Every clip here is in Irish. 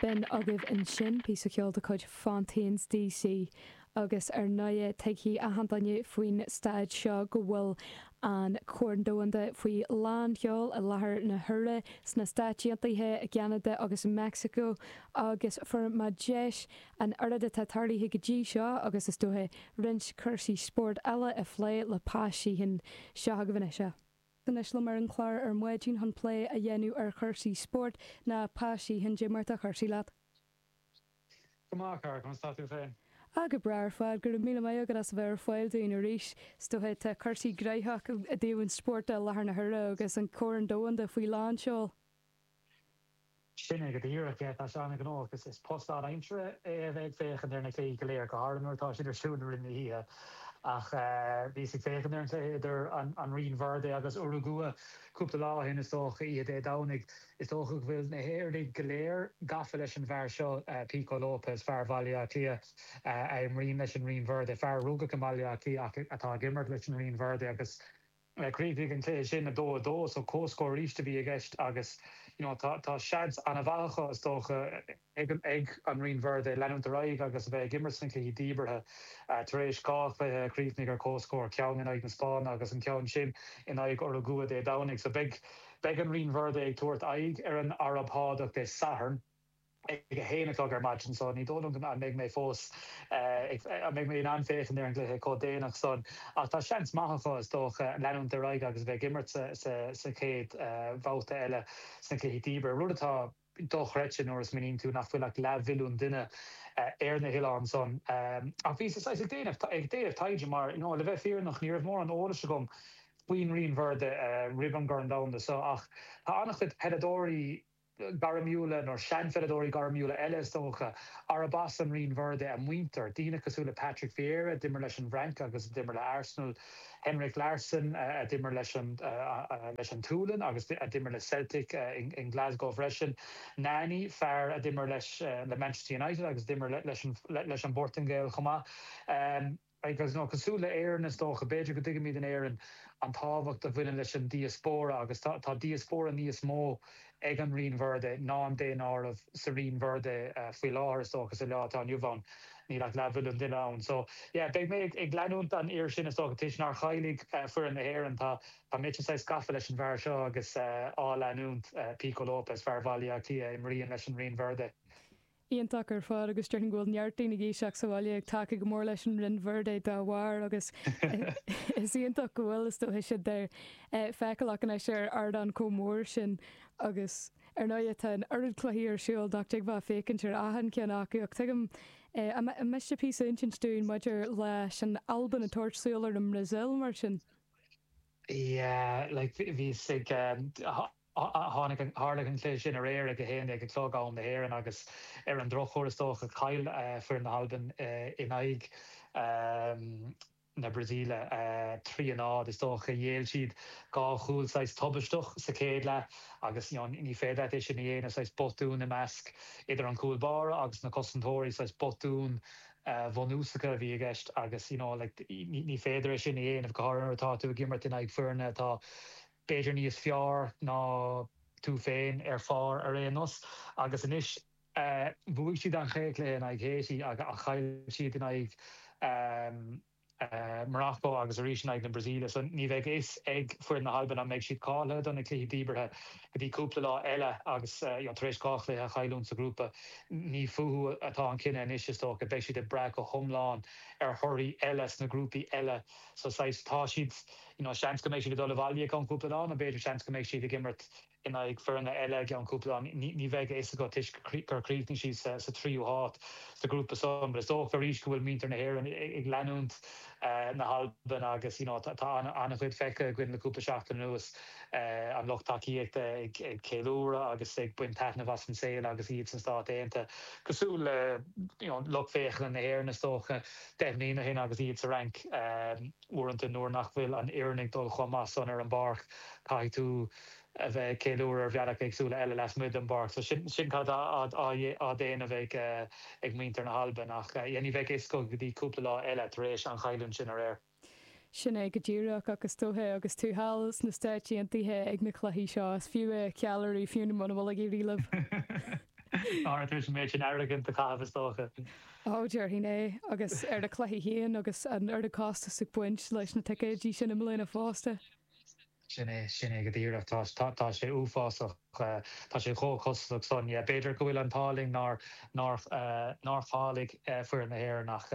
Bíonn agaibh ansin píosa ceoil de chuid Fontaines D.C. agus ar ndóighe tuigfidh achan duine faoin staid seo go bhfuil an Corn Domhanda faoi lán sheol i láthair na huaire sna Stáit Aontaithe, i gCeanada agus i Meicsiceo agus fuair mé deis an oiread atá tarlaithe go dtí seo agus is dóiche roinnt cúrsaí spóirt eile a phlé le Pa Sheehan seo chugaibh anois. Anois liom ar an chlár ar maidin chun plé a dhéanamh ar chúrsaí spóirt ná Pa Sheehan, dé mar tá cúrsaí leat. Go maith, a chara, conas tá tú féin? Ah, go breá ar fad, go raibh míle maith agat as a bheith ar fáil dúinn arís. Is dóiche tá cúrsaí gnaitheach i dtaobh an spóirt i láthair na huaire agus an Corn Domhanda faoi lánseol. Sin é go díreach é. Tá sé an-ghnóthach agus is post lán-aimsire é a bheith ag féachaint ar na cluichí go léir, go háirithe nuair atá siad ar siúl i rith na hoíche. Ach bhíos ag féachaint ar an cluiche idir an Rinn Verde agus Urugua cúpla lá ó shin, is dócha, oíche Dé Domhnaigh. Is dócha go bhfuil na hÉireannaigh go léir gafa leis an bhfear seo, Pico Lopes, fear Bhaile Átha Cliath a imríonn leis an Rinn Verde, fear a rugadh i mBaile Átha Cliath ach atá ag imirt leis an Rinn Verde agus, Chríochnaigh an cluiche sin 2, 2 so comhscór arís a bhí i gceist agus you know tá tá seans an-mhaith acu is dócha ag an ag an Rinn Verde leanúint ar aghaidh agus a bheith ag imirt sna cluichí díbeartha tar éis dhá chluiche a chríochnaigh ar comhscór, ceann in aghaidh na Spáinne agus an ceann sin in aghaidh Urugua Dé Domhnaigh. So beidh beidh an Rinn Verde ag tabhairt aghaidh ar an Araib Shádach Dé Sathairn. ag a haon a chlog ar maidin so ní dóigh liom an mbeidh mé fós ag, an mbeidh mé in ann féachaint ar an gcluiche chomh déanach san. Ach tá seans maith acu, is dócha, leanúint ar aghaidh agus a bheith ag imirt sa chéad bhabhta eile sna cluichí díbeartha, rud atá dochreidte nuair a smaoiníonn tú nach bhfuil ach leathmhilliún duine ar na hoileáin san. Ach bhíos saghas ag déanamh, ag déanamh taighde mar, you know, le bheith fírinneach ní raibh mórán eolais agam faoin Rinn Verde roimh an gCorn Domhanda so ach tá an-chuid peileadóirí, gairmiúla nó seanpheileadóirí gairmiúla eile is dócha, arb as an Rinn Verde a muintir, daoine cosúil le Patrick Vieira, a d'imir leis an bhFrainc agus a d'imir le Arsenal, Henrik Larsson, a d'imir leis an leis an tSualainn agus a d'imir le Celtic i nGlasgow freisin, Nani, fear a d'imir leis le Manchester United agus a d'imir leis an leis an bPortaingéil chomh maith. Beidh, agus nó cosúil le Éireann is dócha, b'fhéidir go dtuigimid in Éirinn an tábhacht a bhaineann leis an diaspóra agus tá diaspóra níos mó ag an Rinn Verde ná an daonáireamh sa Rinn Verde faoi láthair is dócha sa lá atá inniu ann níl ach leathmhilliún duine ann. So, yeah, beidh mé ag leanúint an fhir sin is dócha toisc nár cháiligh foireann na hÉireann tá táimid saghas gafa leis an bhfear seo agus á leanúint, Pico Lopes, fear Bhaile Átha Cliath a imríonn leis an Rinn Verde. iontach ar fad agus déarfainn go bhfuil neart daoine ag éisteacht sa bhaile ag tacú go mór leis an Rinn Verde dá bharr agus is iontach go bhfuil, is dóiche, siad feiceálach anois ar ardán chomh mór sin agus ar ndóighe tá an oiread cluichí ar siúl nach dtiocfá féachaint ar achan cheann acu ach tuigim an miste píosa a insint dúinn maidir leis an Albain ag tabhairt súil ar an mBrasaíl mar sin. Yeah like bhíos ag. Tharla an cluiche sin aréir ag a haon déag a chlog, am na hÉireann, agus ar an drochuair is dócha gur chaill foireann na hAlban in aghaidh na Brasaíle, trí a náid. Is dócha gur ghéill siad dhá chúl saghas tubaisteach sa chéad leath agus ní féidir leat é sin a dhéanamh, saghas botún i measc, idir an cúl báire agus na cosantóirí, saghas botúin bhunúsacha a bhí i gceist agus you know like ní féidir é sin a dhéanamh go háirithe nuair atá tú ag imirt in aghaidh foirne atá b'fhéidir níos fearr ná tú féin ar phár ar aon nós. Agus anois bhuaidh siad an chéad cluiche in aghaidh Haiti ach chaill siad in aghaidh Morocco agus arís in aghaidh na Brasaíle so ní bheidh a fhios ag foireann na hAlban an mbeidh siad cáilithe do na cluichí díbeartha go dtí cúpla lá eile agus tar éis dhá chluiche a chailliúint sa ghrúpa ní fúthu atá an cinneadh anois is dócha. Beidh siad ag brath go hiomlán ar thorthaí eile sna grúpaí eile so saghas tá siad you know seans go mbeidh siad ag dul abhaile i gceann cúpla lá nó b'fhéidir seans go mbeidh siad ag imirt in aghaidh foirne eile i gceann cúpla lá, ní bheidh a fhios agat toisc gur chríochnaigh siad sa tríú háit sa ghrúpa san but is dócha arís go bhfuil muintir na hÉireann ag leanúint na hAlban agus you know tá an-chuid feicthe againn le cúpla seachtain anuas an lucht tacaíochta ag ceiliúradh agus ag baint taitnimh as an saol agus iad sna Stáit Aontaithe cosúil le you know lucht féachana na hÉireann is dócha deich mbliana ó shin agus iad sa Fhrainc. Uaireanta nuair nach bhfuil an fhoireann ag dul chomh maith san ar an bpáirc caithfidh tú a bheith ag ceiliúradh ar bhealach éagsúla eile lasmuigh den bpáirc. So sin sin cad atá á déanamh ag ag muintir na hAlban ach yeah ní bheidh a fhios go dtí cúpla lá eile tar éis an chailliúint sin aréir. Sin é go díreach ach is dóiche agus tú thall sna Stáit Aontaithe ag na cluichí seo is fiú a cheiliúradh fiú muna bhfuil ag éirí libh. Tar éis an méid sin airgid a chaitheamh is dócha. Ó, déarfainn é. Agus ar na cluichí féin agus an oiread costas ag baint leis na ticéidí sin i mbliana fosta. Sin é, sin é go díreach. Tá sé uafásach. Tá sé chomh costasach san. B'fhéidir go bhfuil an t-ádh linn nár cháiligh foireann na hÉireann ach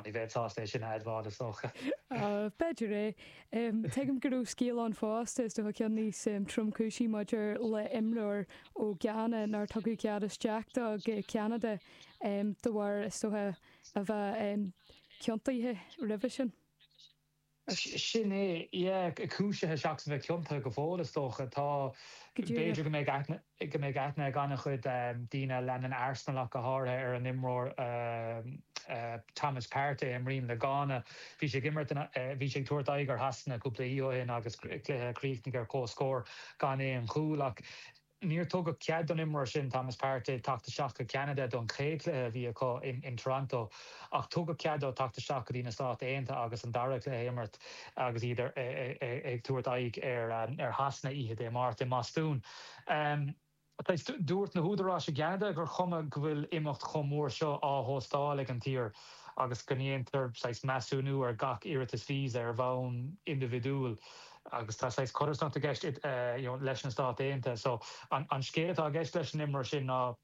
ní bheinn sásta é sin a admháil is dócha. Ó, b'fhéidir é. Tuigim go raibh scéal ann fosta, is dóiche ceann níos tromchúisí, maidir le imreoir ó Ghana nár tugadh cead isteach dó go Ceanada de bharr, is dóiche, a bheith ciontaithe roimhe sin. Sin é, yeah. Cúisithe seachas a bheith ciontaithe go fóill, is dócha. Tá, b'fhéidir go mbeidh aithne. go mbeidh aithne ag an-chuid daoine a leanann Arsenal ach go háirithe ar an imreoir Thomas Partey a imríonn le Gána. Bhí sé ag imirt i, bhí sé ag tabhairt aghaidh ar Shasana cúpla oíche ó shin agus cluiche a chríochnaigh ar comhscór gan aon chúl. Ach níor tugadh cead don imreoir sin, Thomas Partey, teacht isteach go Ceanada don chéad chluiche a bhí acu in Toronto ach tugadh cead dó teacht isteach go dtí na Stáit Aontaithe agus an dara cluiche a imirt agus iad ag tabhairt aghaidh ar Shasana oíche Dé Máirt i mBostún. Anois, dúirt na húdaráis i gCeanada gur chuma go bhfuil imeacht chomh mór seo á hóstáil ag an tír agus go ndéantar saghas measúnú ar gach iarratas visa ar bhonn indibhidiúil agus tá saghas codarsnacht i gceist leis na Stáit Aontaithe. So, an scéal atá i gceist leis an imreoir sin ná.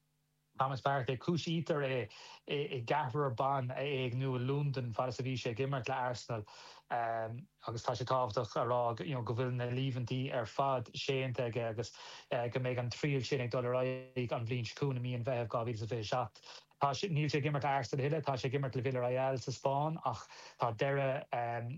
Thomas Partey, cúisítear é i gceathrar ban a éigniú i Londain fad is a bhí sé ag imirt le Arsenal agus tá sé tábhachtach a rá go bhfuil na líomhaintí ar fad séanta aige agus go mbeidh an triail sin ag dul ar aghaidh an bhliain seo chugainn i mí an Mheithimh 2027. Níl sé ag imirt le Arsenal a thuilleadh, tá sé ag imirt le Villarreal sa Spáinn ach tá deireadh,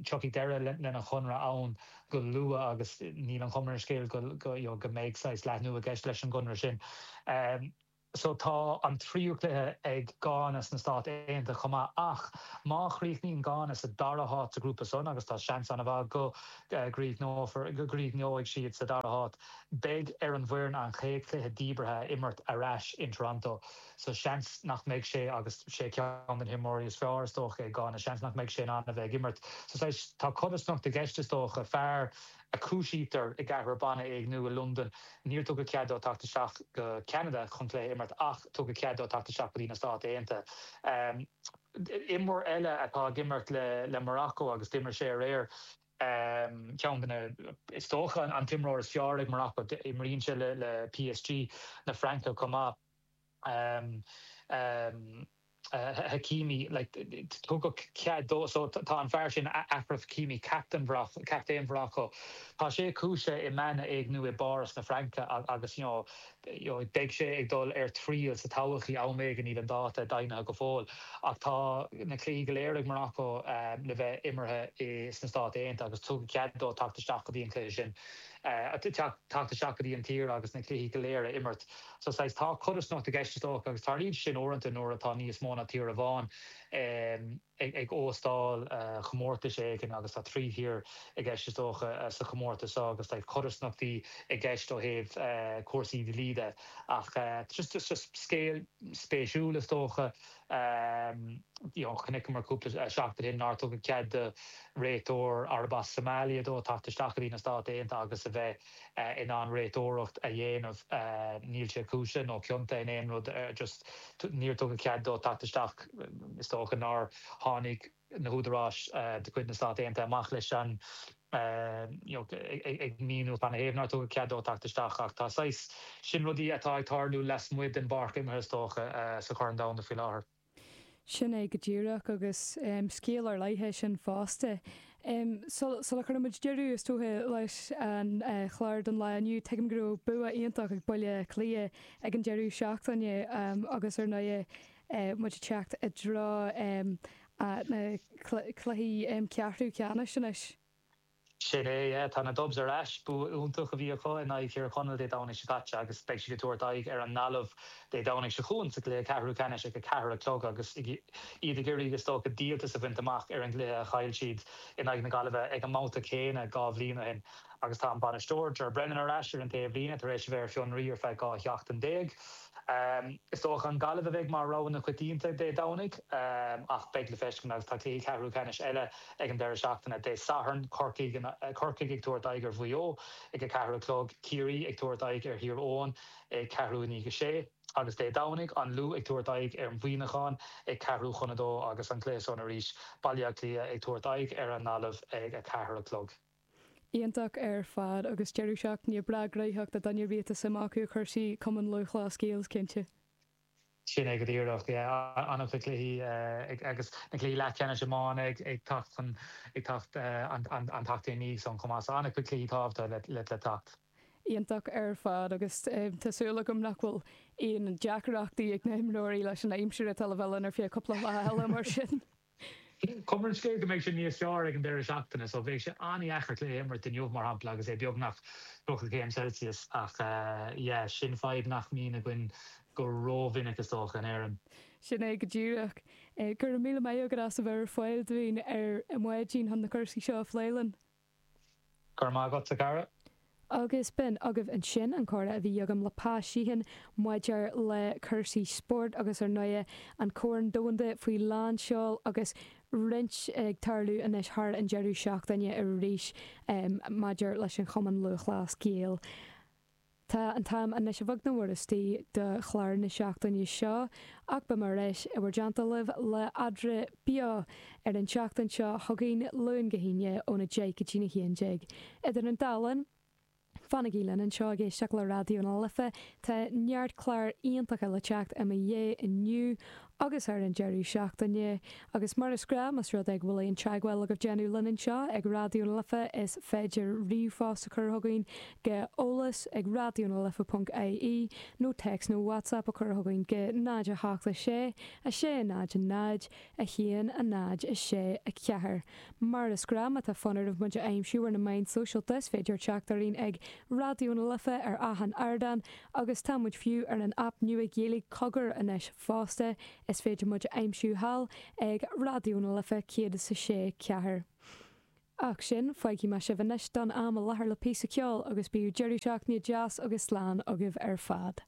tiocfaidh deireadh lena chonradh ann go luath agus níl an chuma ar an scéal go, you know, go mbeidh saghas leathnú i gceist leis an gconradh sin. So tá an tríú cluiche ag Gána sna Stáit Aontaithe chomh maith ach má chríochnaíonn Gána sa dara háit sa ghrúpa san, agus tá seans an-mhaith go gcríochnófar, go gcríochnóidh siad sa dara háit, beidh ar an bhfoireann an chéad chluiche díbeartha a imirt ar ais in Toronto. so seans nach mbeidh sé agus is é ceann de na himreoirí is fearr is dócha ag Gána, seans nach mbeidh sé in ann a bheith ag imirt so saghas, tá codarsnacht i gceist is dócha, fear a cúisítear i gceathrar ban a éigniú i Londain, níor tugadh cead dó teacht isteach go Ceanada chun cluiche a imirt ach tugadh cead dó teacht isteach go dtí na Stáit Aontaithe. Imreoir eile atá ag imirt le le Morocco agus d'imir sé aréir, ceann de na, is dócha an t-imreoir is fearr ag Morocco, imríonn sé le le PSG na Fraince chomh maith. Hakimi, like, tugadh cead dó, so tá an fear sin, Achraf Hakimi, captaen Mhorocco, captaen Mhorocco, tá sé cúisithe i mbean a éigniú i bPáras na Fraince agus, you know, beidh sé ag dul ar triail sa todhchaí, am éigin, níl an dáta deimhnithe go fóill, ach tá na cluichí go léir ag Morocco le bheith imeartha sna Stáit Aontaithe agus tugadh cead dó teacht isteach go dtí an cluiche sin, teacht isteach go dtí an tír agus na cluichí go léir a imirt so saghas tá codarsnacht i gceist is dócha agus tarlaíonn sé sin uaireanta nuair atá níos mó ná tír amháin ag óstáil comórtas éigin agus tá trí thír i gceist is dócha sa chomórtas seo agus tá codarsnachtaí i gceist ó thaobh cúrsaí dlí de ach just just scéal spéisiúil is dócha you know chonaiceamar cúpla seachtain ó shin nár tugadh cead do réiteoir arb as Somalia dó teacht isteach go dtí na Stáit Aontaithe agus a bheith in ann réiteoireacht a dhéanamh. Níl sé cúisithe nó ciontaithe in aon rud. Just níor tugadh cead dó teacht isteach. Is dócha nár tháinig na húdaráis de chuid na Stát Aontaithe amach leis an, you know, ag míniú cad ina thaobh nár tugadh cead dó teacht isteach. Ach tá saghas, sin rudaí atá ag tarlú lasmuigh den bpáirc imeartha, is dócha, sa Chorn Domhanda faoi láthair. Sin é go díreach, agus scéal ar leith é sin fosta. Sula gcuirimid deireadh, is dócha, leis an chlár don lá inniu, tuigim go raibh bua iontach ag Baile Átha Cliath ag an deireadh seachtaine agus, ar ndóigh, muid ag teacht i dtreo na cluichí ceathrú ceannais anois. Sin é, yeah. Tá na Dubs ar ais. Bua iontach a bhí acu in aghaidh Thír Chonaill Dé Domhnaigh seo caite agus beidh siad ag tabhairt aghaidh ar an nGaillimh Dé Domhnaigh seo chugainn sa gcluiche ceathrú ceannais ag a ceathair a chlog agus iad ag iarraidh, is dócha, díoltas a bhaint amach ar an gcluiche a chaill siad in aghaidh na Gaillimhe ag an mbabhta céanna dhá bhliain ó shin. Agus tá an bainisteoir, Ger Brennan, ar ais ar an taobhlíne tar éis a bheith ar fionraí ar feadh dhá sheachtain déag. Is dócha an Gaillimh a bheidh mar rogha na coitianta Dé Domhnaigh ach beidh le feiscint agus tá cluichí ceathrú ceannais eile ag an deireadh seachtaine. Dé Sathairn, Corcaigh ag tabhairt aghaidh ar Mhaigh Eo ag a ceathair a chlog, Ciarraí ag tabhairt aghaidh ar Thír Eoghain ag ceathrú i ndiaidh a sé agus Dé Domhnaigh, An Lú ag tabhairt aghaidh ar Mhuíneachán ag ceathrú chun a dó agus an cluiche san arís, Baile Átha Cliath ag tabhairt aghaidh ar an nGaillimh ag a ceathair a chlog. Iontach ar fad agus deireadh seachtaine breá gnaitheach do dhaoine ar bith atá suim acu i gcúrsaí Cumann Lúthchleas Gael is cinnte. Sin é go díreach, yeah. An-chuid cluichí ag agus na cluichí leathcheannais iomána ag teacht chun ag teacht an tseachtain i ndiaidh san chomh maith so an-chuid cluichí tábhachta le le teacht. Iontach ar fad agus tá súil agam nach bhfuil aon deacaireachtaí ag na himreoirí leis an aimsir atá le bheith linn ar feadh cúpla lá eile mar sin. Cuma ar an scéal go mbeidh sé níos fearr ag an deireadh seachtaine so bheadh sé an-dheacair cluiche a imirt inniu mar shampla agus é beagnach 30 céim Celsius ach yeah sin fadhb nach mbíonn againn go rómhinic is dócha in Éirinn. Sin é go díreach. Go raibh míle maith agat as a bheith ar fáil dúinn ar maidin chun na cúrsaí seo a phlé linn. Go raibh maith agat, a Dhara. Agus b'in agaibh ansin an comhrá a bhí agam le Pa Sheehan maidir le cúrsaí spóirt agus ar ndóigh an Corn Domhanda faoi lánseol agus roinnt ag tarlú anois thar an deireadh seachtaine arís maidir leis an Chumann Lúthchleas Gael. Tá an t-am anois a bheag nó a mhór istigh do chlár na seachtaine seo ach beidh mé ar ais in bhur dteannta libh le eadra beo ar an tseachtain seo chugainn Luan go hAoine ón 10 go dtí'n 11. Idir an dá linn, fanaigí linn anseo ag éisteacht le Raidió na Life, tá neart clár iontacha le teacht i mo dhiaidh inniu Agus ar an deireadh seachtaine, agus mar is gnáth más rud é go bhfuil aon teagmháil le déanamh linn anseo ag Raidió na Life is féidir ríomhphost a chur chugainn go eolas ag raidionalife.ie nó téacs nó whatsapp a chur chugainn go 0, 8, 6, 6, 0, 0, 1, 0, 6, 4. Mar is gnáth má tá fonn oraibh muid a aimsiú ar na meáin sóisialta is féidir teacht orainn ag Raidió na Life ar achan ardán agus tá muid fiú ar an aip nua Ghaeilge Cogar anois. fosta, is féidir muid a aimsiú thall ag Raidió na Life 106. 4. Ach sin, fágfaidh mé sibh anois don am a láthair le píosa ceoil agus bíodh deireadh seachtaine deas agus slán agaibh ar fad.